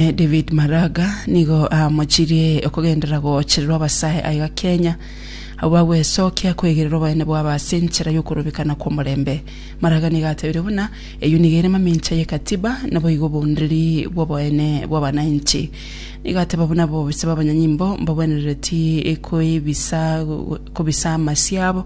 David Maraga nigo aamochirie okogenderera goochererwa abasae aiga Kenya, abwo bagwesokia kwegerera obonene bwabo ase enchera y'okorobekana kw'omorembe. Maraga nigo atebire buna, Eyio nigo ere mamincha y'ekatiba, naboigo obounderi bw'oboene bw'abanainchi. Nigo ateba buna abobisa b'abanyanyimbo mbagwenerereti koibisa kobisa amasio abo,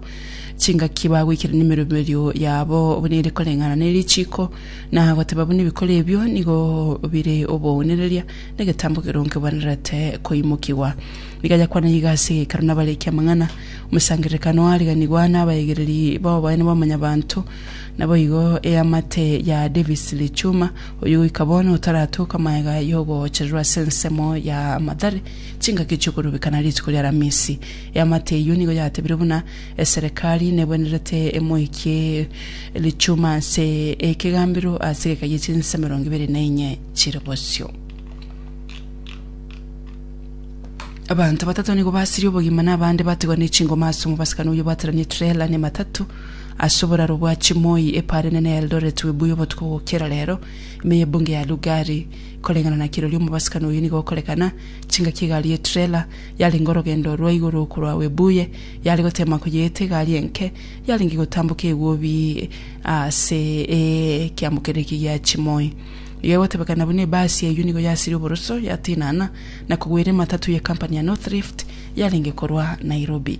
chingaki bagoikerania emeroberio yabo buna ere koreng'ana nerichiiko, na goteba buna ebikori ebio nigo bire obounereria, na egetambo keronge bwenerete koimokigwa. Rigayakwana iga ase egekaro nabariki amang'ana, omosangererekano oariganigwa nabaegereri b'oboene bwa Mwanyabaanto. Naboigo eamate ya Davis Lichuma, oyio goika bono otaratoka magega y'ogoochererwa ase ensemo ya Mathare chingaki chi'okorubekana rituko ri'Aramisi. Eamate eyio nigo yatebire buna Eserekari negwenerete emoikie richuma ase ekegambero ase egeka gie chinsa emerongo ebere na enye chire bosio. Abanto batato nigo basirie obogima na abande batigwa ne chingoma ase omobasakano oyio bwaterania etrela ne matatu ase oboraro bwa chimoi e Pare Nene ya Eldoret Webuye obotuko gokiera rero ime ye Bunge ya Lugari. Koreng'ana na kirori omobasakano oyio nigo okorekana chingaki egari ye trela Yarenge orogendo rwa igoro korwa Webuye, yare goteema koyeeta egari enke, yarenge gotamboka egwobi ase ekiamokero eke gia chimoi. Iga egotebekana buna ebasi eyio nigo yasirie oboroso, yatinana, na kogwera ematatu ye kampani ya Northlift yarenge korwa Nairobi.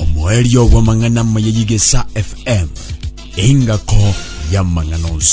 Omoerio bw'amang'ana amaya y'Egesa FM, engako y'amang'ana onsi.